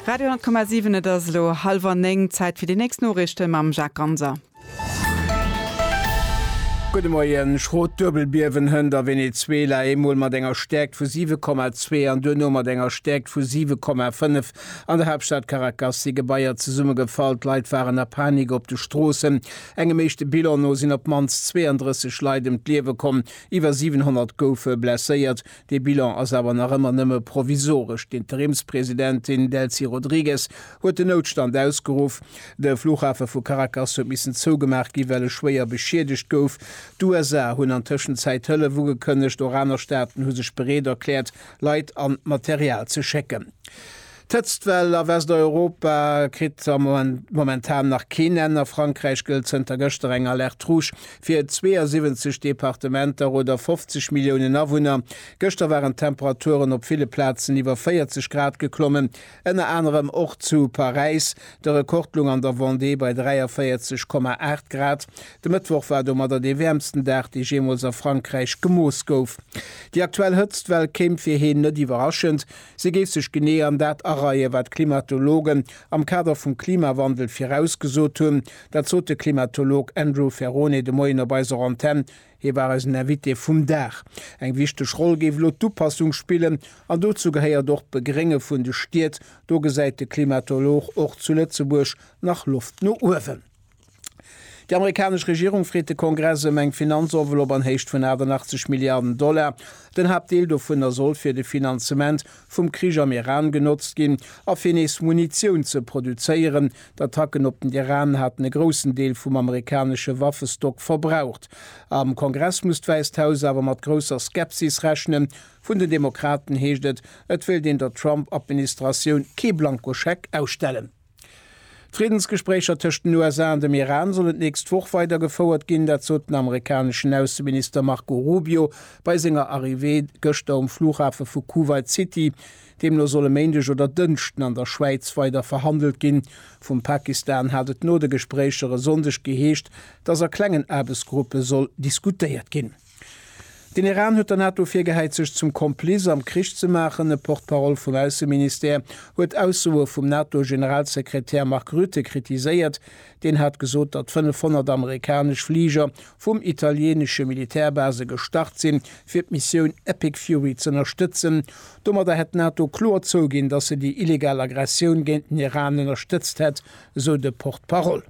Radio 10,7 Et ass elo hallwer néng, Zäit fir déi nächst Noriichte mam Jacques Ganser. Gudde Moien, Schrot Duebelbiewen hënt a Venezuela, eemol mat enger Stäerkt vu 7,2 an duerno mat enger Stäerkt vu 7,5. An der Haaptstad Caracas si Gebaier zesummegefall, d'Leit waren a Panik op de Stroossen. Engem éischte Bilan no sinn op d'mannst 32 Leit ëm d'Liewe komm, iwwer 700 goufe blesséiert. Dee Bilan ass awer nach ëmmer nëmme provisoresch. D'Interimspresidentin Delcy Rodrigues huet den Noutstand ausgeruff. De Flughafe vu Caracas huet missen zougemaach ginn, well e schwéier beschiedegt gouf. D'USA hunn an Tëschenzäit Hëllef ugekënnegt, och aner Staaten hu sech bereet erkläert, Leit an Material ze schécken. D'Hëtztwell a Westeuropa kritt momentan nach keen Enn. A Frankräich gëllt zënter gëschter eng Alerte rouge fir 72 Departementer oder 50 Milliounen Awunner. Gëschter waren d'Temperaturen op ville Plazen iwwer 40 Grad geklommen, ënner anerem och zu Paräis. De Rekord loung an der Vendée bei 43,8 Grad. De Mëttwoch war domadder dee wäermsten Dag, dee jeemools a Frankräich gemooss gouf. Déi aktuell Hëtztwell kéim fir heen net iwwerraschend. Si géif sech genee an dat areie wat d'Klimatologen am Kader vum Klimawandel virausgesot hunn. Dat sot de Klimatolog Andrew Ferrone de Moien op eiser Antenn. Hie war eisen Invité vum Dag. Eng wichteg Roll géif elo d'Upassung spillen. An dozou gehéiert och d'Begrénge vun de Stied. Do gesäit de Klimatolog och zu Lëtzebuerg nach Loft no uewen. Déi amerikanesch Regierung freet de Kongress ëm eng Finanzenveloppe an Héicht vun 88 Milliarden Dollar. Den Haaptdeel dovunner soll fir de Finanzement vum Krich am Iran genotzt ginn a fir nees Munitioun ze produzéieren. D'Attacken op den Iran haten e groussen Deel vum amerikanesche Waffestock verbraucht. Am Kongress muss d'Wäisst Haus awer mat grousser Skepsis rechnen. Vun den Demokraten heescht et, et wéilt een der Trump-Administratioun kee Blankoscheck ausstellen. D'Friddensgespréicher tëscht den USA an dem Iran sollen d'nächst Woch weider gefouert ginn. Dat sot den amerikaneschen Ausseminister Marco Rubio bei senger Arrivée gëschter um Flughafe vu Kuwait City. Deemno soll e Méindeg oder Dënschden an der Schwäiz weider verhandelt ginn. Vum Pakistan hat et no de Gespréicher e Sonndeg geheescht, dass a klengen Aarbechtsgruppe soll diskutéiert ginn. Den Iran huet der NATO virgehäit, sech zum Komplice am Krich ze maachen. E Porte-parole vum Ausseministère huet Aussoe vum NATO-Generalsekretär Mark Rutte kritiséiert. Deen hat gesot, datt 500 amerikanesch Fliger vum italieenesche Militärbase gestart sinn, fir d'Missioun Epic Fury z'ënnerstëtzen. Domadder hätt d'NATO kloer zouginn, datt se déi illegal Aggressioun géint den Iran ënnerstëtzt hätt, esou de Porte-parole.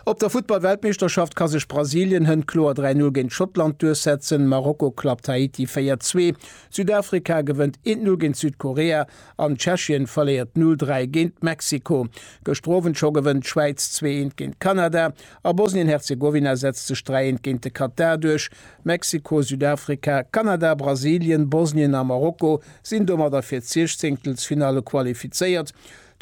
Op der Futtball-Weltmeeschterschaft ka sech Brasilien hënt kloer 3 Null géint Schottland duerchsetzen, Marokko klappt Haiti 4 Zwee, Südafrika gewënnt 1 Null géint Südkorea an Tschechien verléiert 0 Dräi géint Mexiko. Gëschter Owend scho gewënnt d'Schwäiz zwee Eent géint Kanada a Bosnien-Herzegowina setzt sech 3 Eent géint de Katar duerch. Mexiko, Südafrika, Kanada, Brasilien, Bosnien a Marokko sinn domadder fir d'Siechzéngtelsfinalle qualifizéiert.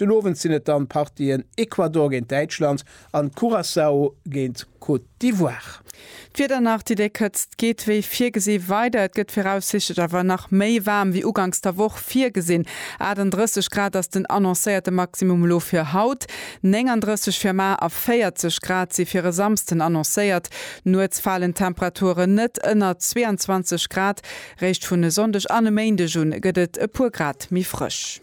Den Owend sinn et dann d'Partien Ecuador géint Däitschland an Curaçao géint Côte d'Ivoire. D'Wieder nach, Déi déck Hëtzt geet wéi virgesi weider. Et gëtt viraussichtlech awer nach méi waarm wéi uganks der Woch virgesinn. 38 Grad ass den annoncéierte Maximum elo fir haut, 39 fir mar a 40 Grad si fir e Samsden annoncéiert. Nuets falen d'Temperaturen net ënner 22 Grad. Réischt vun e Sonndeg an e Méindeg u gëtt et e puer Grad méi frësch.